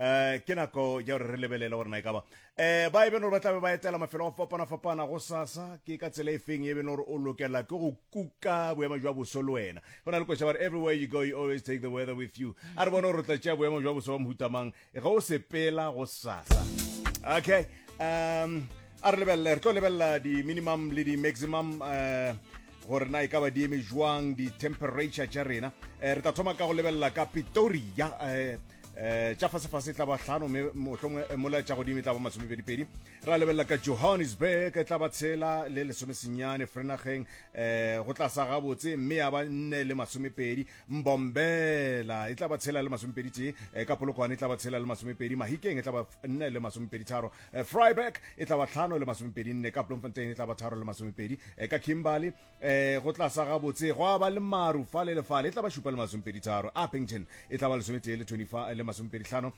um ke nako ya gore re lebelele gore na e ka ba um ba e beno gore ba tlabe ba etela mafelo a fapana-fapana go sasa ke ka tsela e feng e beno gore o lokela ke go kuka boemo jwa boso le wena go na le kwesa gore everywhere you go you always take the weather with you a re bone gore o tla tšea boemo jwa boso wa mohutamang ge o sepela go sasa okay um a re lebelele re tlo lebelela di-minimum le di-maximum um gore na e ka ba di eme jwang di-temperature tša rena um re tla thoma ka go lebelela ka pitoria um um tša fasefase e tla ba tlhano mme mohlongwe eh, mola tša godimo e tla ba masomepedipedi ra lebelela ka johannesburg e tla ba tshela le lesomesenyane frenageng um go tlasa gabotse mme ya ba nne le masomepedi mbombela e tla ba tshela le masomepedi tee um ka polokwane e tla ba tshela le masomepedi mahikeng e tla ba nne le masomepedi tharo Eh, Freiburg e tla ba tlhano le masomepedi nne ka Bloemfontein e tla ba tharo le masomepedi eh, ka Kimberley eh, go tla sa gabotse gwa ba le maru fa le lefale e tla ba šupa le masomepedi tharo Appington e tla ba lesometee le 25 le masomepedi tlhano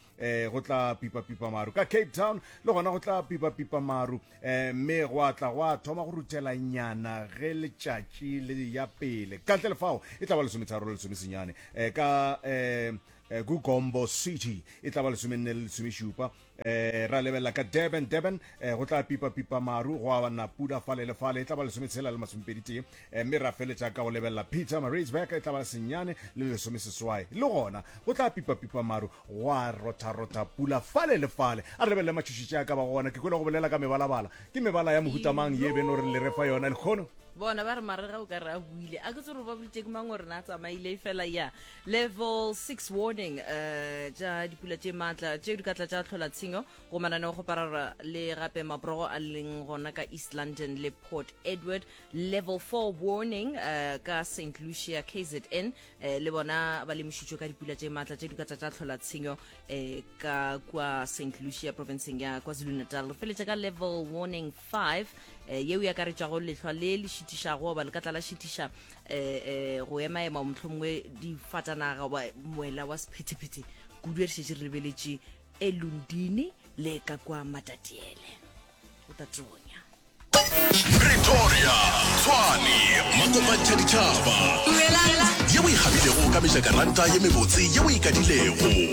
go tla pipapipa maru ka Cape Town le gona go tla pipapipa maru mme gwa tla gwa thoma go rutela nyana ge letšatši le ya pele ka ntle lefao e tla ba lesometharo le lesomesenyane ka um Eh, gugombo city e tla ba lesomenne le lesomešupa Eh, ra lebelela ka Durban, Durban, eh, go tla pipa pipa maru, go abana pula fale le fale, e tla ba lesome tshela le masome pedi tee, eh, mme ra feletša ka go lebelela Peter Maritzburg, e tla ba senyane le lesome seswai. Le gona, go tla pipa pipa maru, go a rotha rotha pula fale le fale. A re lebelele matšhošetše a ka ba gona, ke kwele go bolela ka mebalabala. Ke mebala ya mohutamang ye beno re le refa yona, lekgono? bona ba re marega o ka re a buile a ke tsoro ba boditše ke mang gore na a tsamaile e fela ya Level 6 warning uh, tša dipula tše maatla tšeo di ka tla tša tlhola tshenyo go mananeo go parara le gape maborogo a leng gona ka east london le port edward level 4 warning uh, ka st lucia kzn uh, le bona ba lemošitšwe ka dipula tše maatla tše di ka tla tša tlhola tshenyo uh, ka kua st lucia provinceng ya kwazulu natal re feletše ka level warning 5 eh, yeo e akaretšago lehlwa le le šitišago goba lekatla la šitiša eh, eh, go emaema o mohlomongwe difatanaga goba moela wa sephetephete kudu ya dišetše re lebeletše e lundini le ka kwa matatiele o tatonya pretoria tshwane makopantsha ditšhaba ye o ikgabilego ka mejakaranta ye mebotse ye o ikadilego